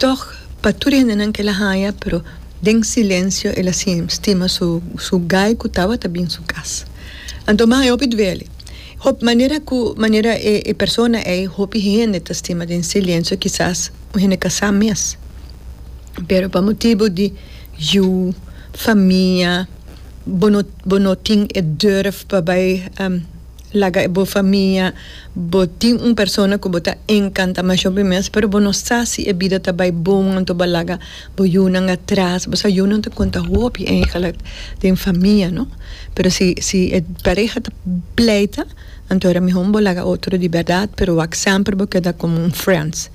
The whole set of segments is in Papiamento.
Tog, pa tur e hendenan ke el a haña, pero den silensio el a stima su gai ku tabata bin su kas. Anto mas e hopi duele. Hopi manera ku manera e persona ei hopi hende ta stima den silensio kisas un hende kasá mes, pero pa motibu di yu, famia, bo no tin e durf pa bai. Laga e bo famia, bo tin un persona ku bo ta enkanta masho pi mes, pero bo no sa si e bida ta bai bon anto bo a laga bo yunan atras. Bo sa yunan ta konta hopi eigelik den famia, no? Pero si si e pareha ta pleita anto a mihó bo laga otro di bèrdat, pero wak semper bo keda komo un friends.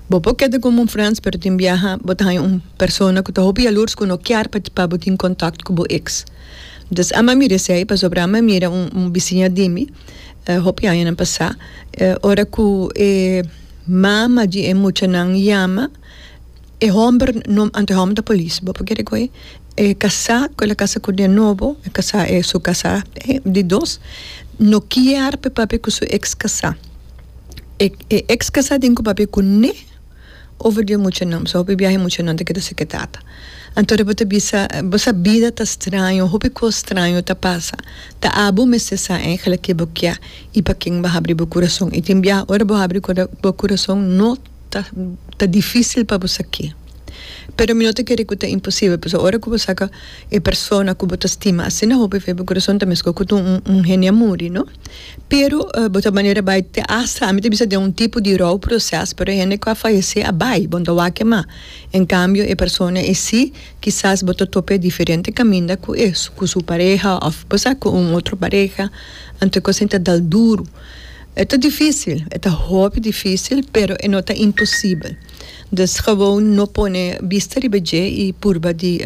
Bo por keda komo un friends pero tin biaha bo ta haña un persona ku ta hopi yalursku no kier pa bo tin kontakt ku bo eks. Entonces a mira esey pasobra a mira un bisiña di mi hopi añanan pasa ora cu e mama di e muchanan yama e homber no anto e homber ta police bo por kere cu e casa cu ela casa cu den nobo e casa e su casa di dos no kier pe papia cu su ex casa e ex casa den cu papia cu ne Over di e muchanan, pasobra hopi biaha e muchanan ta keda seketata. Anto Rebe ta bisa, Bo sa bida ta straño, hopi kos straño ta pasa. Ta a bo mester sa enkele ke bo kia i pa ken bo habri bo kurason. I tin biaha ora bo habri bo kurason no ta ta difisil pa bo sa ke. Pero mi no ta kere ku ta imposibel, pasobra ora ku bo saka e persona ku bo ta stima asina hopi fe bo kurason ta mescor ku ta un un hende a muri, no? Pero bo ta manera bai te asa ami ta bisa den un tipo di rou proces pero e hende cu a fayece a bai bo no ta wak ema en cambio e persona e si kisas bo ta top'e diferente caminda cu e cu su pareha of bosa cu un otro pareha anto e cos ain ta dal duro e ta dificil e ta hopi dificil pero e no ta imposible dus gewoon no pone bista riba dje y purba di.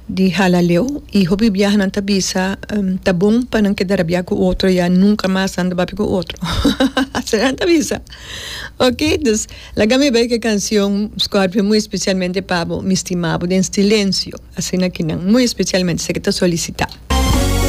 Di halaleu y hopi biaha nan ta bisa ta bon pa nan keda rabia cu otro ya nunca mas nan ta papia cu otro asina nan ta bisa ok dus laga mi bay ki cancion Scorpio muy especialmente pa bo mi stima bo den silencio asina kinan muy especialmente esaki ta solicita.